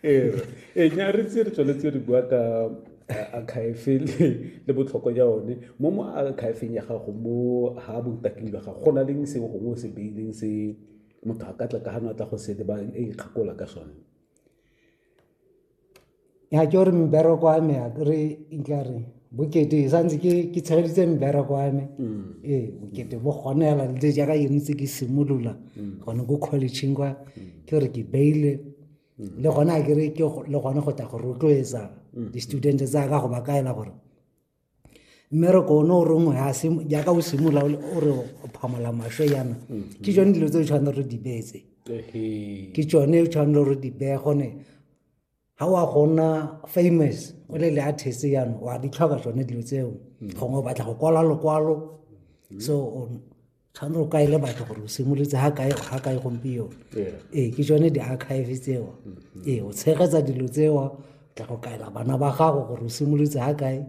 ee nya re tse re tsweletse re bua ka akhaefe le botlhokwa ja one mo mo akhaefeng ya gago mo ha botaking jwa gago go na leng se gongwe o se beileng se motho a ka tla ka gano a tla go se le ba e ikgakola ka sone ya ke gore mbereko wa me a kere itlare bokete e santse ke ke tshegeditse mbereko wa me mm. ee bokete bo gone fela le jaaka yone tse ke simolola mm. gone ko collegeng kwa mm. ke gore ke beile le gone a kere ke le gone go tla go rotloetsa di-student tsa ka go ba kaela gore mmereko one o rongwe jaaka o simolola o re o phamola maswe yana mm-hmm. ke tsone dilo tse o tshwanetse re di beetse ke tsone o tshwanetse re di beye gone ga wa gona famous o le le artist yana wa di tlhoka tsone dilo tseo mm-hmm. gongwe o batla go kwala lokwalo mm-hmm. so tshwanetse o kaele batho gore o simolotse ga kae gompieno ee ke tsone di-archive tseo mm-hmm. ee o tshegetsa dilo tseo tla go kaela bana ba gago gore o simolotse ga kae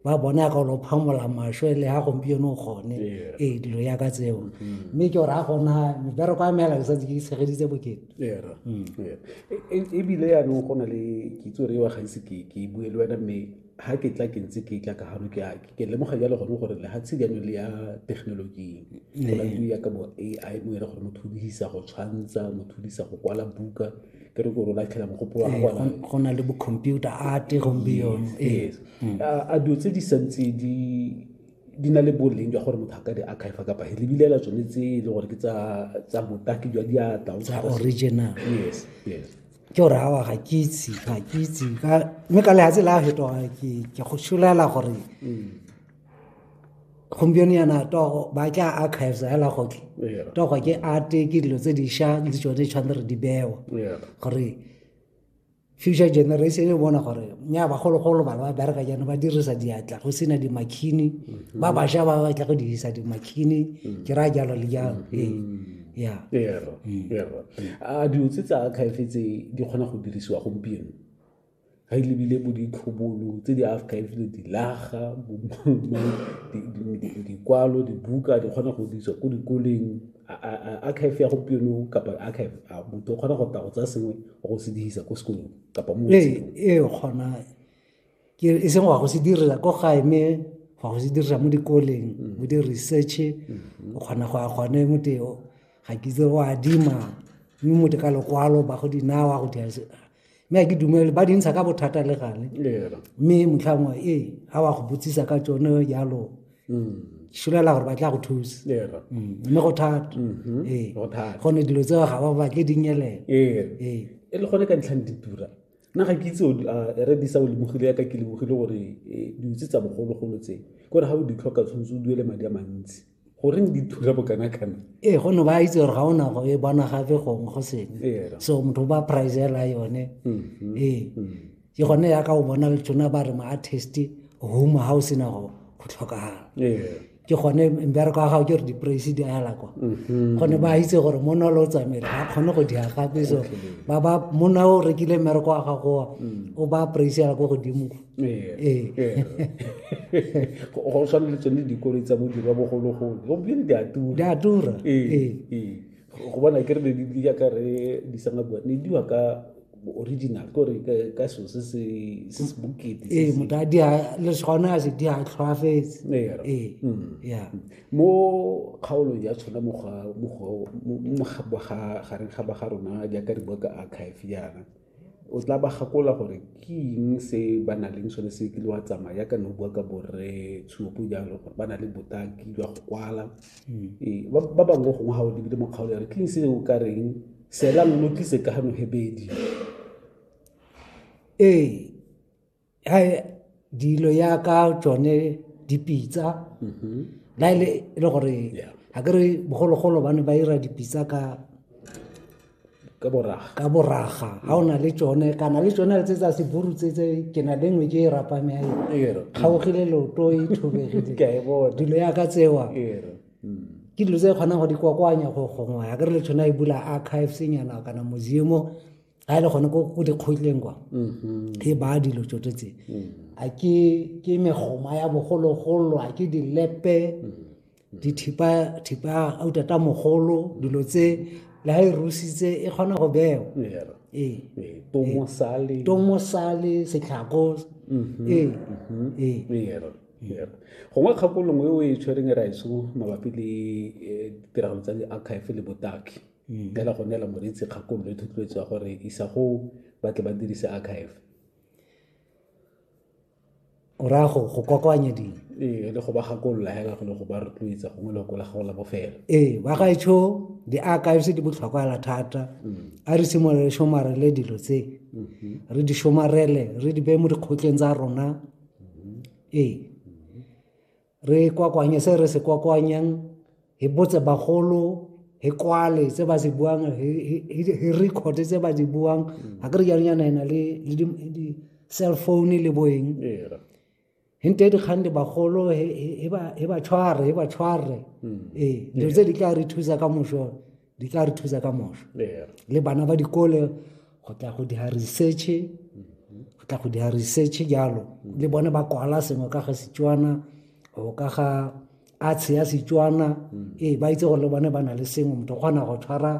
ba bona ka lo phamola masho le ha gompieno o gone ee dilo ya ka tseo mm-hmm. mme ke gore a gona mebereko ya meela ke santse ke tshegeditse bokete mm. e, e, ebile yaanong go na le kitso re wa gaise ke bue le wena mme ga ke tla ke ntse ke tla ka gano ke ke lemoga jalo gone gore lehatshe jaanong le ya thekenoloji go na le ya ka bo a i mo ere gore motho o dirisa go tshwantsha motho o dirisa go kwala buka ke re gore o latlhela mogopolo wa gona go na le bo-computer arte gompieno yes mm. a dilo tse di santse di di na le boleng jwa gore motho a ka di archive kapa he lebilela tsone tse e le gore ke tsa botaki jwa diatla original yes yes ke gore awa ga ke itse ga ke itse mme ka lehatshe la fetoga ke go šolela gore mm. gompieno yana togo ba tla archives hela goke togo ke arte ke dilo tse diša le tsone di tshwanetse re di bewa gore future generation e bona gore nya bagologolo bana ba bereka jaana ba dirisa diatla go sena dimakhini mm-hmm. ba bašwa ba batla go dirisa dimakhini mm. ke raya jalo le jalo ee a dilo tse tsa archive tse di kgona go dirisiwa gompieno ga e lebile bo ditlhobolo tse di archivele dilaga dikwalo dibuka di kgona go dirisiwa ko dikoleng archive ya gompieno kapa archive a motho o kgona go tla go tsaya sengwe go se dirisa ko sekolong kapa mo ee, ee kgona ke e seng wa go se direla ko gae mme wa go se dirisa mo dikoleng mm. mo di-research mm-hmm. o kgona go ya gone moteo ga ke itse go adima mme mote ka lokwalo ba go dinawa go dira mme a ke dumele ba dintsha ka bothata le gale mme motlhangwe ee ga wa go botsisa ka tsone jalo mm. šolela gore ba tla go thusa mm. mme go thata mm-hmm. ee gone dilo tseo ga ba batle dinyelela ee. ee. e le gone ka ntlhang ditura nna ga ke itse re disa o lebogile yaka ke lebogile gore eh, diutse tsa bogologolo tse kore ga o di tlhoka tshwanetse o duele madi a mantsi goreng di thula bokanakana ee gonne ba itse gore ga o nago e bona gape gongwe go sengwe ee, so motho o ba pricela yone mm-hmm. ee mm-hmm. ke gone yaka o bona le tsona ba re ma artist home ga o sena go tlhokagala ee. ke gone mbereko wa gago ke gore di-praise di ala kwa mhm. gone ba itse gore monna o le o tsamaele ga kgone go dia gape so ba ba monna o rekile mmereko wa gagowa mm. o ba praise ala ko godimo ee. Ee. go tshwana le tsone dikolo tsa bodirwa bogologolo gompieno di a tura di a tura ee. go bona ke re ne di yaka re di sanga bua ne diwa ka original ko re ka ka so se se se se bokete ee motho a dia le gone a se di a tlhwaafetse ee mm. ya mo kgaolong ya tshwana mo ga mo go ga gareng ga ba ga rona jaaka re bua ka archive yana o tla ba gakola gore ke eng se ba na leng sone se kile wa tsamaya yaka ne o bua ka borre tshuopo jalo gore ba na le botaki jwa go kwala hmm. ee, ba bangwe gongwe ga o lebile mo kgaolo ya re ke eng se o ka reng sela lo tlise ka gano hebedi ee ha dilo ya ka tsone dipitsa mm-hmm. la ile e le gore ga ke re bogologolo ba ne ba ira dipitsa ka ka boraga ka boraga ga o na le tsone kana le tsone tse tsa seburu tse tse ke na le nngwe ke e rapame ya e kgaogile leoto e thobegile dilo ya ka tsewa ke dilo tse kgonang go di kokoanya go gongwe ya ke re le tshwana e bula archives nyana kana museum-o ga e le gone ko dikgotleng kwa mm-hmm. e baya dilo tsoto tse mm. a ke megoma ya bogologolo a ke dilepe mm-hmm. dithipa autata mogolo dilo tse le ga e rusitse e kgona go bewa ee. Ee, tomosale setlhako mm-hmm. ee. gongwe kgakolong e o e tshwereng e raeso mabapi le eh, ditiragalo tsa di-archive le botaki mm. fela go neela moreetsi kgakololo e thotloetso ya gore isa go batle ba dirise archive o raya go go kokoanya dilo ee le go ba gakolola hela go le go ba rotloetsa gongwe le go la gago la bofelo ee ba gaetsho di-archives di botlhokwa thata mm. a re simolole shomarele dilo tse mm-hmm. re di shomarele re di beye mo dikgotleng tsa rona Ee, re kwakwanye se re se kwakwanyang, hi botse bagolo, hi kwale se ba se buang, hi record-e tse ba di buang. Ha ke re jalo yana e na le di-cell phone le bo eng. Hi nte dikgang le bagolo, hi ba tshware, hi ba tshware. Ee, dilo tse di tla re thusa kamoso. di tla re thusa ka moso le bana ba dikole go tla go dira research go tla go dira research jalo le bone ba kwala sengwe ka ga setswana go ka ga atshe ya setswana ee ba itse gore le bone ba na le sengwe motho kgona go tshwara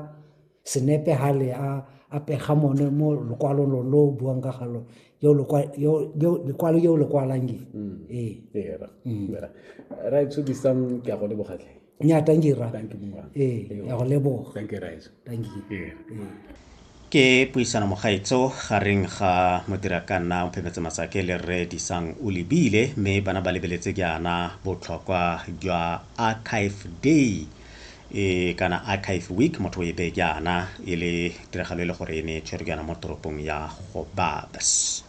senepe ga le a apega mone mo lokwalong lo lo buang ka galo lekwalo yo le kwalang ee ra tsodisang ke a go lebogatlhe nya thank you ra thank you eh ya go leboga thank you guys thank you eh. ke puisano mogaetso gareng ga modirakanna mphemetse masake le rre disang o lebile mme bana ba lebeletse ke ana botlhokwa jwa archive day e kana archive week motho o e beke ana e le tiragalo e le gore e ne e tshwerwe ke ana mo toropong ya gobabs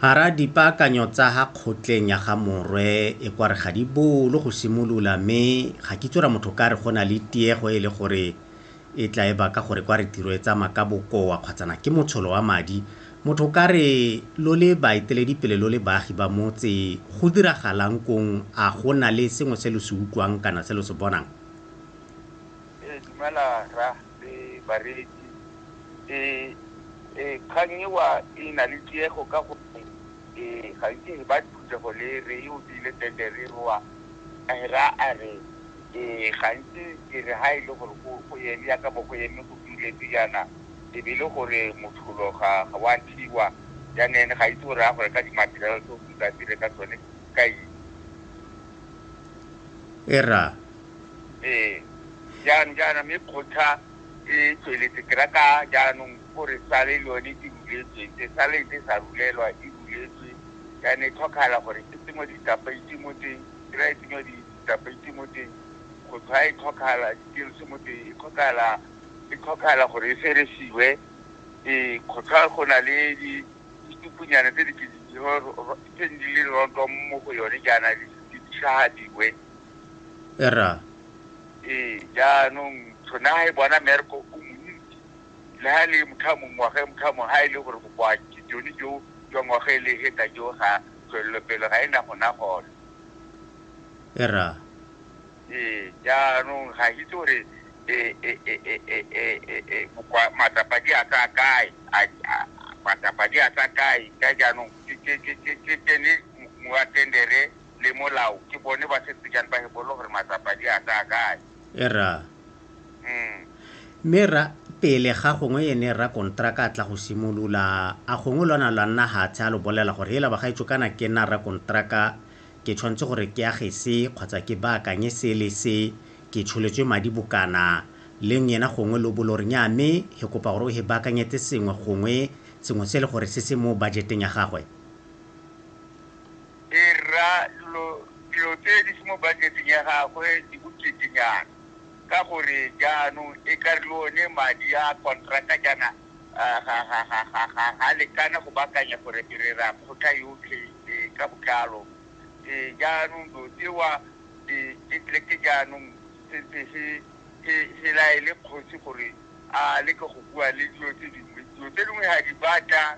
Hara dipaakanyo tsa ha kgotleng ya ga Morwe e kware ga di bolo go simolola mme ga kitso ra motho ka re go na le tiego e le gore e tla e baka gore kware tiro e tsamaya ka bokoa kgwatsana ke motsholo wa madi. Motho ka re lo le baeteledipele lo le baagi ba motse go diragalang kong a go na le sengwe se lo se utlwang kana se lo se bonang? Ee, dumela rra. eh, bareetsi eh, eh, kgang ewa e na le tiego ka gore eh, gantsi re ba phuthego le re e obile tendere ewa ra a re eh, gantsi ke re ga e le gore go- go eme yaka bo go eme go duletse yana e be e le gore motlholo ga ga wa thiwa janene ga itse gore a gore ka dimaterial tse o tsa dire ka tsone ka eng e ra Ee, jang jaana, mme kgotla e tsweletse ke rata jaanong gore sale le yone e ruletswe, se sale ntse sa rulelwa, e ruletswe jaana, e tlhokagala gore e tsenngwe ditapeiti mo teng, kry-a e tsenngwa ditapeiti mo teng, kgotla e tlhokagala, di-tills mo teng, e tlhokagala, e tlhokagala gore e feresiwe. Ee, kgotla go na le ditupunyana tse di ke di tse di leng roto mo go yone jaana, di tlhagadiwe. erra ee jaanong tshone ga e bona merko o montsi le ga e le motho a mongwe ngwaga e motho a mongwe ga e le gore bokoa jone jo jwa ngwaga e le heta jo ga tswelelopele ga e na gona gone erra ee jaanong ga itse gore matsapa di a tsa kae matsapa di a tsa kae ka jaanong ke tsene moatendere le molao ke bone ba setse jang ba hebolo gore matsapa di a tsaya kae era mm. mme ra pele ga gongwe ene ra kontraka a tla go simolola a gongwe lwana lwa nna gatshe a lo bolela gore ela bagaetso kana ke nna ra kontraka ke tshwanetse gore ke age se kgotsa ke baakanye se le se ke tsholetswe madi bokana leng yena gongwe lo bolo re nya mme he kopa gore o he baakanyetse sengwe gongwe sengwe se e le gore se se mo budgeteng ya gagwe e rra dilo dilo tse di se mo budget-eng ya gagwe di boketenyana ka gore jaanong e ka re le one madi a contractor jaana ga lekana go bakanya gore re ra kgotha yotlhe ka botlalo jaanong do tsewa ke tleke jaanong sentse se se laele kgosi gore a leke go bua le dilo tse dingwe dilo tse dingwe ga di batla